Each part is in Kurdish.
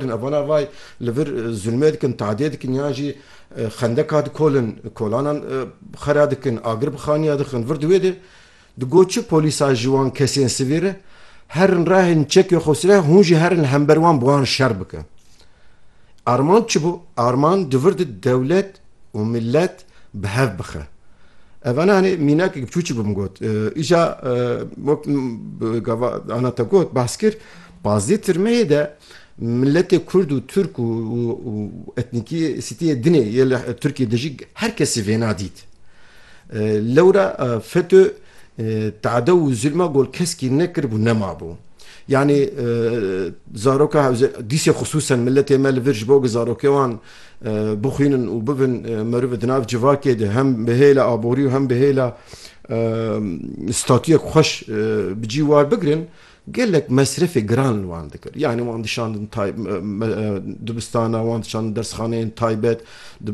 Di navana ve li vir zulmê dikin, tadiyê dikin yan jî xendeka dikolin, kolanan xera dikin, agir bi xaniya dixin. Vir di wê de di got çi polîsa ji wan kesên sivî re herin rahên çekê xwe sireh hûn jî herin li hember wan bi wan şer bikin. Arman çi bû? Arman di vir de dewlet û milet bi hev bixe. Evana hinê mînakek biçûçik bi min got, îca wek gava ana te got behs kir, Pazdeh tirmehê de miletê kurd û tirk û etnîkî sîtîyê dinê yê li Tirkîyê de jî her kesî vêna dît. Lewra feto tadew û zulma gol keskî nekiribû nemabû. Yanî zaroka hewzêne dîsê xisûsen miletê me li vir ji bo ku zarokê wan bixwînin û bibin merivê di nav civakê de hem bi hêla aborî û hem bi hêla statuyek xweş bi cî war bigirin, Gelek mesrefê giran li wan dikir. Yanî wan dişandin dibistana, wan dişandin dersxaneyên taybet,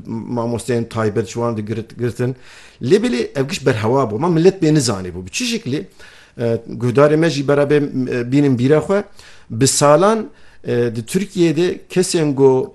mamosteyên taybet ji wan digirtin. Lê belê ev giş berhewa bû. Ma milet pê nizanîbû. Bi çi şiklî? Guhdarê me jî bera bê bînin bîra xwe. Bi salan di Tirkiyeyê de kesên ku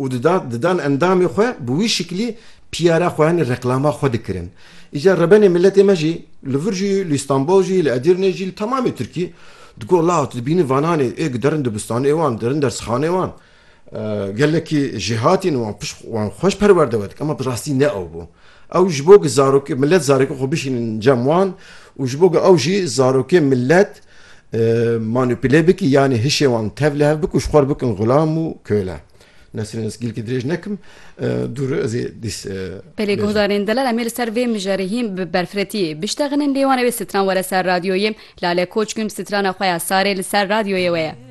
û didan endamê xwe bi wî şiklî piyara xwe yanî reklama xwe dikirin. Îcar rebenê miletê me jî li vir jî, li Îstanbol jî, li Edirnê jî, li temamê Tirkî di got la tu dibînî vananê ê giderin dibistanê wan, derin dersxanê wan gelekî jêhatîn û wan pişt wan xweş perwerde we dikin. Ema bi rastî ne ew bû. Ew ji bo ku zarokê milet zarokê xwe bişînin cem wan û ji bo ku ew jî zarokê milet, manupile bikî yanî hişê wan tev li hev bik û ji xwe re bikin xulam û köle. Nesrin ez gilkî dirêj nekim dûr ez ê dîs Belê guhdarên delal em ê li ser vê mijarê hîn bi berfiretiyê biştexinin lê wan ewê stran were ser radyoyê. Lale Koçgûn strana xwe ya Sarê li ser radyoyê we ye.